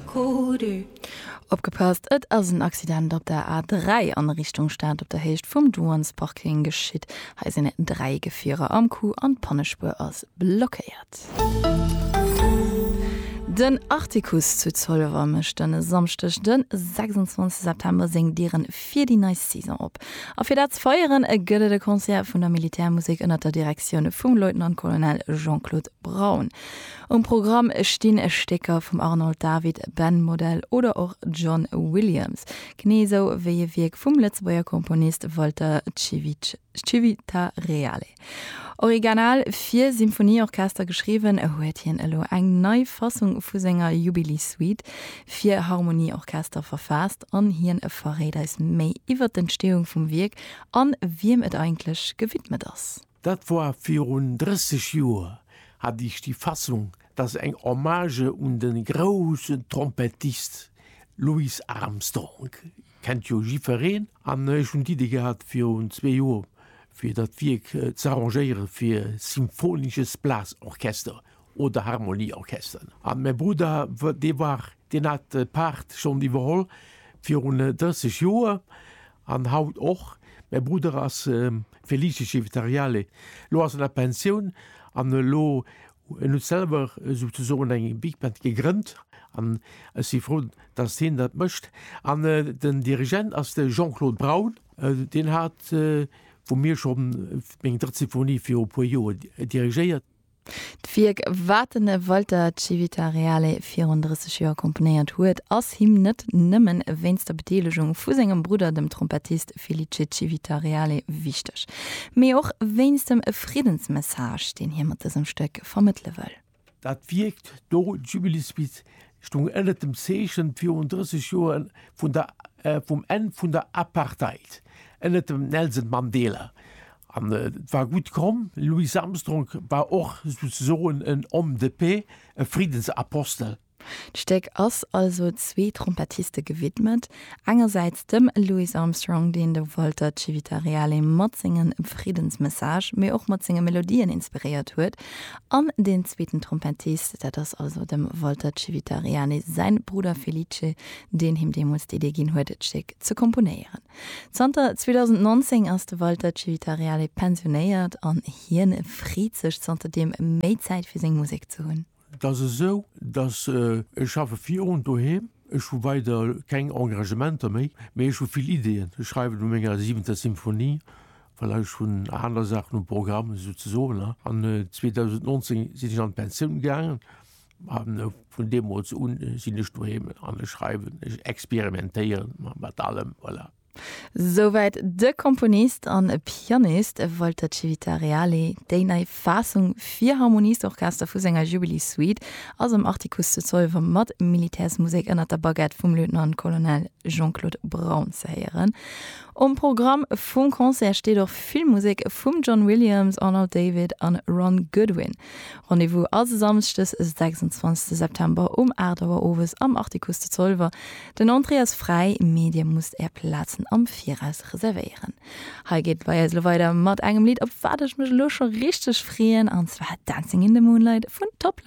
Codu. Opgepasst, et ass en Accident op der A3 an Richtung Stad op der Héicht vum Douanesparking geschitt. Hei sinn 3 Gefierer am Coup an d'Pannespuer ass blockéiert. Den Artikuss zu Zolwer mécht en Samschdeg den 26 September seng Dieren fir déi nei Saison op. A fir dat ze feieren gëtt et e Concert vun der Militärmusek ënnert der Direktioun vum Leutnant-Colonel Jean-Claude Braun. Um Programm stinn Stécker vum Arnold David, Ben Model oder och John Williams, genee esou wéi e Wierk vum Lëtzebuerger Komponist Walter Civitareale. Origanal fir Symphonieorchester geschriwwen, huet hien elo eng nei Fassung vu senger Jubileessuite fir Harmonieorchester verfaasst an hien verréit eis méi iwwer d'Entstehung vum Wierk an wiem et eigentlech gewidmet ass. Dat war virun 30 Joer, hat ech déi Fassung, dass eng Hommage un de groussen Trompettist Louis Armstrong, kennt jo jifereen, an ech hunn d'Iddi gehat virun zwee Joer, fir dat Wierk z'arrangéiere fir Symphonisches Blasorchester oder Harmonieorchester. An mäi Brudder, dee war, deen hat d'Paart schonn iwwerholl virun 30 Joer. An haut och. Mäi Brudder ass Felice Civitariale. Elo ass en a Pensioun an elo, en huet selwer souzesoen eng Big Band gegrënnt an ech si frou, datt hien dat mécht. An den Dirigent ass de Jean-Claude Braun. Deen hat, wou mir scho, meng drëtt Symphonie viru e puer Joer dirigéiert. D'Wierk, wat de Walter Civitareale virun 30 Joer komponéiert huet, ass him net nëmme wéinst der Bedeelegung vu sengem Brudder, dem Trompettist Felice Civitareale, wichteg, mee och wéinst dem Friddensmessage, deen hie mat dësem Stéck vermëttele wëll. Dat Wierk do, Jubilisbit, stoung ënnert dem Zeechen virun 30 Joer vun der vum Enn vun der Apartheid ënnert dem Nelson Mandela An et war gutt komm. Louis Armstrong war och souzesoen en homme de paix, e Friddensapostel. D'Stéck ass also zwee Trompettiste gewidmet, engersäits dem Louis Armstrong, deen de Walter Civitareale mat senge Friddensmessage, mee och mat senge Melodien inspiréiert huet, an deen zweeten Trompettist, dat ass also dem Walter Civitareale säi Brudder Felice, deen him deemools d'Idee ginn huet, d'Stéck ze komponéieren. Zanter 2019 ass de Walter Civitariale pensionéiert an hien freet sech zanter deem méi Zäit fir seng Musek ze hunn. Et ass esou, datt ech schaffe virun doheem. Ech hu weider keng Engagementer méi, mee ech hu vill Ideeën. Ech schreiwen u menger siwenter Symphonie, voilà, ech hunn aner Saachen um Programm esou ze soen. An 2019 sinn ech an d'Pensioun gaangen. A vun deemools un sinn ech doheem an ech schreiwen, ech experimentéieren mat allem. Voilà. Souwäit de Komponist an Pianist Walter Civitariali. Déi nei Faassung fir Harmoniesorchester vu senger Jubilee-Suite ass am Artikuss zu Zolwer mat Militärsmusek ënner der Baguette vum Lieutenant-Colonel Jean-Claude Braun ze héieren. Um Programm vum Concert steet och vill Musek vum John Williams, Arnold David an Ron Goodwin. Rendez-vous also Samschdes e 26 September um 8 Auer owes am Artikuss zu Zolwer. Den Entrée ass fräi, mee dir musst är Plazen am Viraus reservéieren. Hei geet et bei eis elo weider mat engem Lidd op wat ech mech elo scho richteg freeën an zwar Dancing in the Moonlight vun Top Lo.